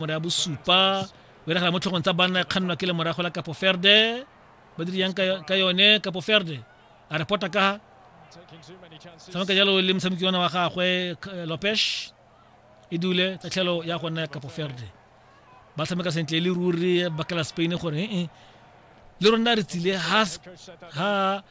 mora ya bosupa o iragala mo tlhogong tsa banna e kgannwa ke lemorago la kapo ferde ba dire yang ka yone kapo ferde a repota ka tshameka jalo le motshameki ona wa gagwe eh, lopes e dule tatlhelo ya go nna ya kapo ferde ba tshameka sentle le ruri bakela spain gore ee le rona re tsile ha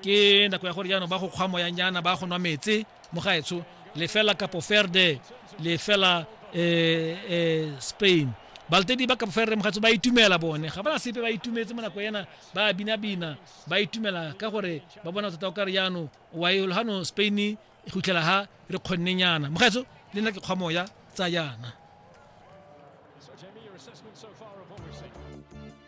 ke nako ya gore jaanong ba go kgwa moyanyana ba go nwa metse mo gaetsho lefela kapo ferde lefela eh, eh, spain baltedi ba kapo ferde mogatso ba itumela bone ga bana sepe ba itumetse mo nako ena ba binabina ba itumela ka gore ba bona tota o kare jaanong waelo gano spain e gutlela ha re kgonne nyana mogaetso le nna ke kgwa moya tsa yana